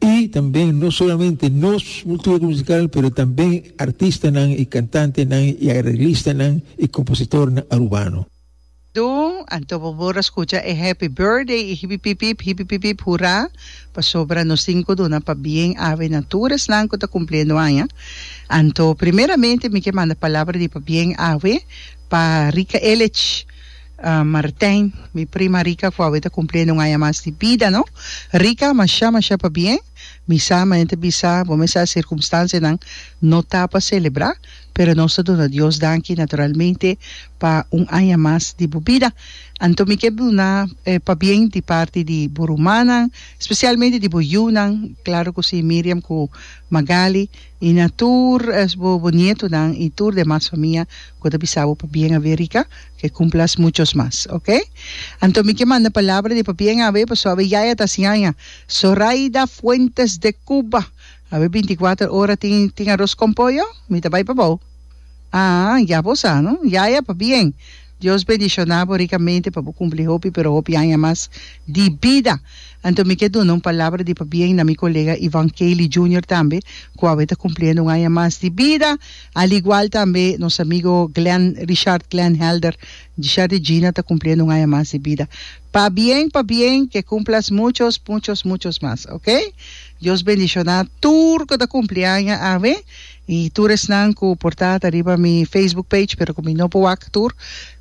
Y tambe no solamente nos cultura musical pero tambe artistanan y cantantenan y arreglistanan y compositornan Arubano. Dun, anto bo por a scucha e Happy Birthday y hipipipip, hipipipip hura, pasobra nos tin cu duna pa bien ave na tur esnan cu ta cumpliendo aña. Anto primeramente mi ke manda palabra di pa bien ave pa Rica Elech, Martijn, Mi prima Rika cu awe ta cumpli aña un aña mas di bida, no? Rika, Masha, masha pabien. Mi sa, mi enta bisa bo mester a circumstancianan no ta pa celebra, pero nos ta duna Dios danki naturalmente pa un aña mas di bo bida. Anto mi ke duna e pabien di parti di bo rumannan, specialmente di bo yunan, claro cu si, Miriam cu Magali. I na tur bo bo nietonan i tur demas famia ku ta bisa bo pa bien awe Rika, ke kumplas muchos mas ok. Anto mi ke manda palabra di pa bien awe paso awe yaya ta siaña Zoraida Fuentes de Cuba awe binti kuater ora tin tin aros kon poyo? Mi ta bai pa bou aa ya bo sa no yaya pa bien. Dios bendiciona bo ricamente pa bo cumpli hopi pero hopi aña mas di bida. Anto mi ke duna un palabra di pabien na mi colega Ivan Cayley Junior tambe cu awe ta cumpliendo un aña mas di bida, al igual tambe nos amigo Glen Richard Glen Helder Richard di Gina ta cumpliendo un aña mas di bida. Pabien pabien ke cumplas muchos muchos muchos mas ok. Dios bendiciona tur cu ta cumpli aña awe. I tur esnan ku por ta ta riba mi Facebook page pero ku mi no por wak tur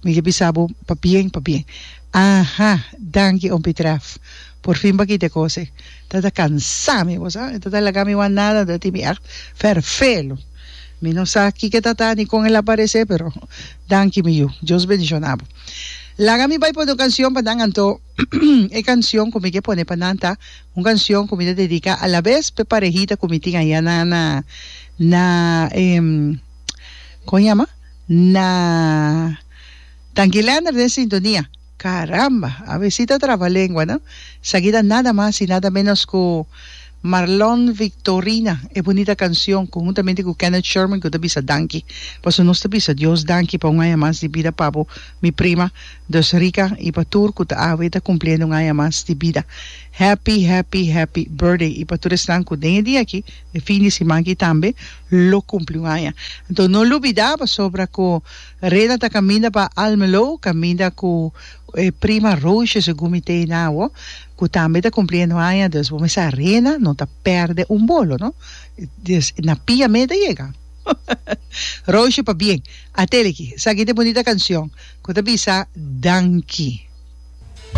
mi ke bisa bo pabien pabien aha danki Ompi Tref por fin bakita e kos ei ta ta kansa mi bo sa e ta ta laga mi wan nada ta tin mi echt ferfelu mi no sa kiko e ta ta ni kon el aparese pero danki mi yu Dios bendishona bo laga mi bai pone un kansion pa nan anto. E canción cu mi ke pone pa nan ta un canción cu mi ta dedica alabes p'e parehita cu mi tin aya na na na e con yama na Tangilander den sintonia caramba a besi ta traba lengua no esaki ta nada mas y nada menos cu Marlon Victorina e bunita cancion cu huntamente cu Kenneth Sherman cu ta bisa danki paso nos ta bisa Dios danki pa un aña mas di bida pabu mi prima Dus Rica y pa tur cu ta awe ta cumpliendo un aña mas di bida Happy Happy Happy Birthday y pa tur esnan cu den e dia aki e fin di siman aki tambe lo cumpli un aña enton no lubida pasobra cu Rena ta caminda pa Almelo caminda cu e prima Roosje segun mi tee na awo. cu tambe ta cumpli e no aña dus bo mester a rena no ta perde un bolo no dus na pia me ta yega Roosje pabien a teleki sa ki ta e bonita cancion cu ta bisa danki.